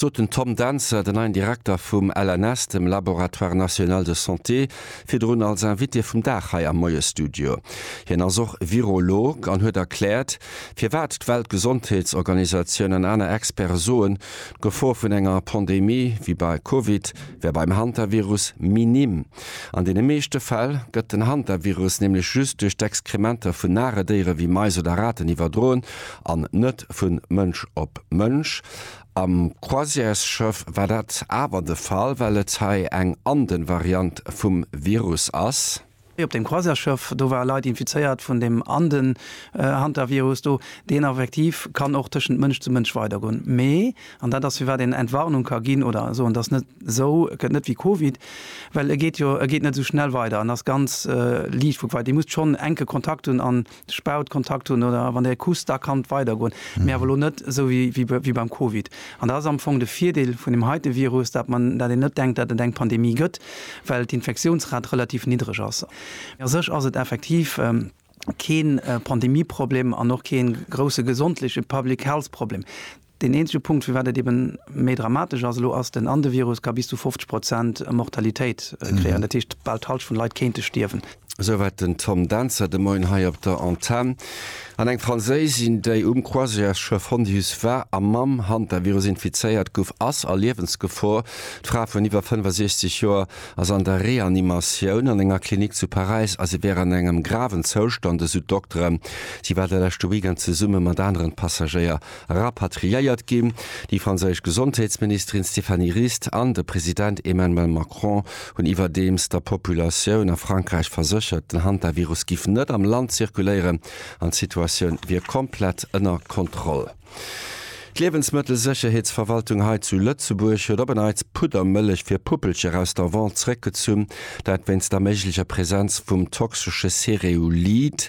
sot den Tom Dentzer, den neien Direkter vum LNS, dem Laboratoire National de Santé, virdrun als Invité vum Dag hei am Moie-Studio. Hien ass och Virolog an huet erkläert, firwat d'Weltgesondheetsorganisatioun an aner Experte soen, d'Gefor vun enger Pandemie wéi bei Covid wär beim Hantavirus minim. An deene meeschte Fäll gëtt den Hantavirus nämlech just duerch d'Exkrementer vun nare Déiere wéi Mais oder Raten iwwerdroen an net vu Mënsch op Mënsch. Am Croisièresschëff war dat awer de Fall, well et hei eng ande Variant vum Virus ass. Hei op deem Croisièresschëff, do ware Leit infizéiert vun deem ande Hantavirus do, deen effektiv kann och tëschent Mënsch zu Mënsch weidergoen. Mee, an dat ass firwat een Entwarnung ka ginn oder soen, dass net esou gëtt net wéi Covid, well e geet jo, e geet net esou schnell weider an ass ganz liicht vu quai. Dir musst schonn enke Kontakt hunn an Spaut, Kontakt hunn oder wann Dir kusst, da kann et weidergoen, mee awer elo net esou wéi beim Covid. An dat ass am Fong de Virdeel vun deem heite Virus, datt mer, datt een net denkt, datt et eng Pandemie gëtt, well d'Infektiounsrate relativ niddereg ass. Mee a sech ass et effektiv kee Pandemieproblem an och kee grousse gesondleche, public health, Problem. Deen eenzege Punkt, firwat et eeben méi dramatesch ass elo, ass den an de Virus ka bis zu 50 Prozent Mortalitéit kréien. Dat heescht, bal d'Halscht vun de Leit kéinte stierwen. Esouwäit den Tom Dentzer de Moien hei op der Antenn. An eng Franséisin, déi um Croisièresschëff Hondius war a mam Hantavirus infizéiert gouf, ass a Liewensgefor. D'Fra vun iwwer 65 Joer ass an der Reanimatioun an enger Klinik zu Paräis a si wär an engem graven Zoustand, esou d'Dokteren. Si war de leschte Weekend zesumme mat aneren Passagéier rapatriéiert ginn. Déi franséisch Gesondheetsministerin Stéphanie Rist an de President Emmanuel Macron hunn iwwerdeems der Populatioun a Frankräich verséchert, den Hantavirus giff net am Land zirkuléieren an d'Situatioun wier komplett ënner Kontroll. D'Liewensmëttelsécherheetsverwaltung hei zu Lëtzebuerg huet op en Neits Puddermëllech fir Puppelcher aus der Vente zeréckgezunn, dat wéinst der méiglecher Presenz vum toxesche Cereulid.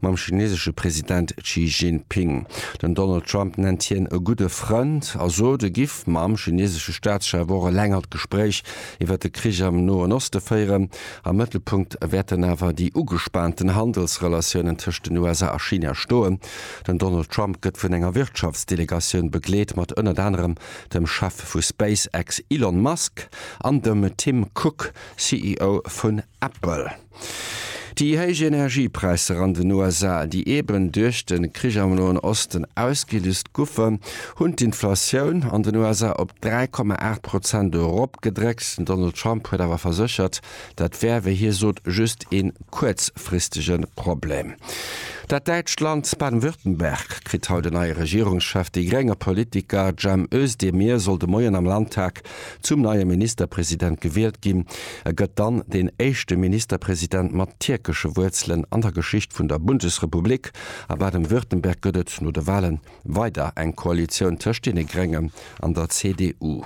mam chinesesche President Xi Jinping. Den Donald Trump nennt hien e gudde Frënd a sot, e giff mam chinesesche Staatschef och e längert Gespréich iwwer de Krich am Noen Oste féieren. Am Mëttelpunkt wäerten awer déi ugespaanten Handelsrelatiounen tëscht den USA a China stoen. Den Donald Trump gëtt vun enger Wirtschaftsdelegatioun begleet, mat ënnert anerem dem Chef vu SpaceX Elon Musk an dem Tim Cook, CEO vu Apple. Déi héich Energiepräisser an den USA, déi eben duerch de Krich am Noen Osten ausgelüst goufen, hunn d'Inflatioun an den USA op 3,8 Prozent eropgedréckt. Den Donald Trump huet awer verséchert, dat wär, wéi hie sot, just ee kuerzfristege Problem. Dat däitscht Land Baden-Württemberg kritt haut en neie Regierungschef. Déi grénge Politiker Cem Özdemir soll de Moien am Landtag zum neie Ministerpresident gewielt ginn. E gëtt dann deen éischte Ministerpresident mat tierkesche Wuerzelen an der Geschicht vun der Bundesrepublik. A Baden-Württemberg gëtt et no de Wahle weider eng Koalitioun tëscht deene Gréngen an der CDU.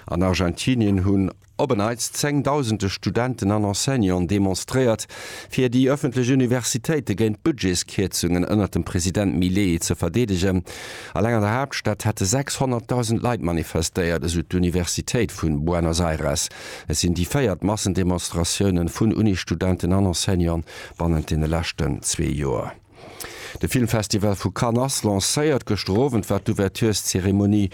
An Argentinien hunn op en Neits zéngdausende Studenten an Enseignanten demonstréiert, fir déi ëffentlech Universitéite géint d'Budgetskierzungen ënnert dem President Milei ze verdeedegen. Alleng an der Haaptstad hätte 600.000 Leit manifestéiert, esou d'Universitéit vu Buenos Aires. Et sinn déi véiert Massendemonstratioune vun Unisstudenten an Enseignanten bannent deene leschten zwee Joer. De Filmfestival vu Cannes lancéiert gëschter Owend war d'Ouvertureszeremonie.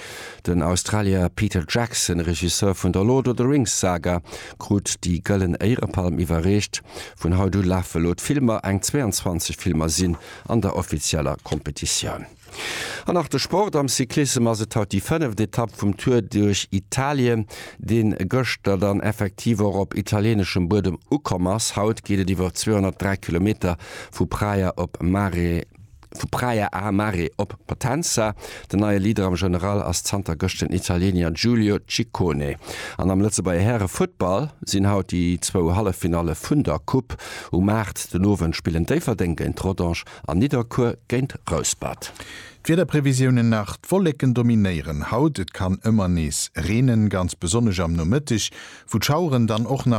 Den Australier Peter Jackson, Regisseur vun der Lord of the Rings Saga, krut déi Gëllen Éierepalm iwwerreecht. Vun haut u lafe lo d'Filmer, eng 22 Filmer sinn an der offizieller Competitioun. An nach de Sport, Am Cyclissem ass et haut déi fënneft Etapp vum Tour duerch Italien, deen gëschter dann effektiv och op italieneschem Buedem ukomm ass. Haut geet et iwwer 203 Kilometer vu Praia op Mare, vu Praia a Mare op Potenza. Den neie Leader am General ass zanter gëscht den Italiener Giulio Ciccone. An am Lëtzebuerger Häre Futtball sinn haut déi zwou Halleffinalle vun der Coupe um Maart. Den Owend spillen Déifferdeng géint Rodange An Nidderkuer géint Rouspert. D'Wiederprevisiounen nach, D'Wolleken dominéieren haut, et kann ëmmer nees reenen, ganz besonnesch am Nomëtteg, wou d'Schaueren dann och